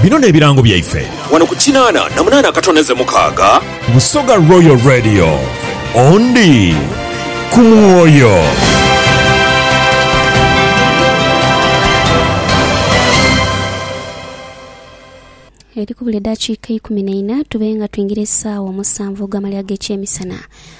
Bino n'ebirango byaife. Wano ku kinaana na munaana akatone ze mukaaga. Busoga Royal Radio, ondi ku mwoyo. Edhikubula edhakiika eikumi naina tube nga twingira esaawa omusanvu ogw'amalya g'ekyemisana.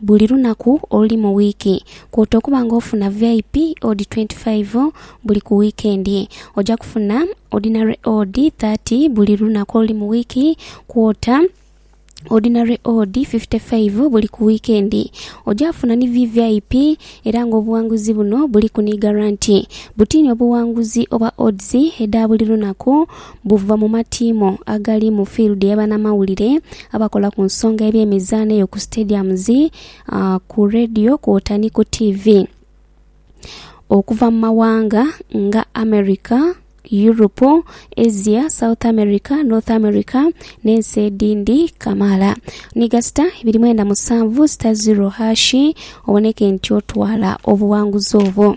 Buli lunaku oluli mu wiiki, kwota okuba nga ofuna VIP odi 25 buli ku wiikendi. Oja kufuna Ordinary odi 30 buli lunaku oluli mu wiiki, kwota Ordinary odi 55 buli ku wiikendi. Oja funa ni VVIP era nga obughanguzi buno buliku ni garanti. Butini obughanguzi obwa odds edha buli lunaku. buva mu matiimo agali mu field ya banamawulire, abakola ku nsonga y'ebyemizaano eyo ku stadiums, ku Radio kwota ni ku TV okuva mu mawanga nga America, Europe, Asia, South America, North America n'ensi edhindi kamaala. Ni gasita ibiri mwenda musanvu sita ziro hashi oboneke nti otwala obuwanguzi obwo.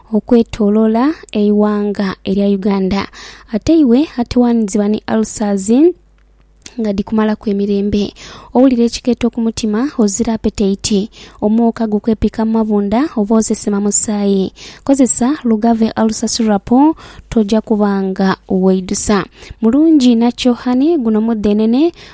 okwetolola eighanga erya Uganda ate iwe atowanizibwa ni ulcers nga dhikumalaku emirembe, owulira ekikeeto ku mutima, ozira apetaiti, omwoka gukwepika mu mabunda oba osesema musaayi, kozesa Lugave Ulcer Syrup toja kuba nga weidhusa. Mulungi inha kyo honey, guno mudhenene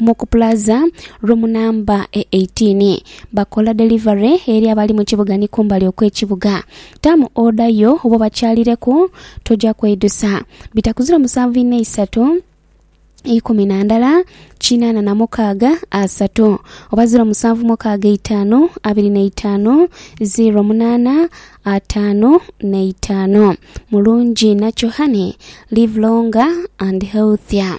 mu ku Plaza Room Namba e 18. Bakola delivery eri abali mu kibuga ni kumbali okw'ekibuga. Taamu oda yo oba obakyalireku, toja kweidusa. Bitaku ziro musanvu inha isatu, ikumi na ndala, kinaana na mukaaga, asatu, oba ziro musanvu mukaaga eitaanu, abiri na itaanu, ziro munaana, ataanu na itaanu. Mulungi inha kyo honey. Live longer and healthier.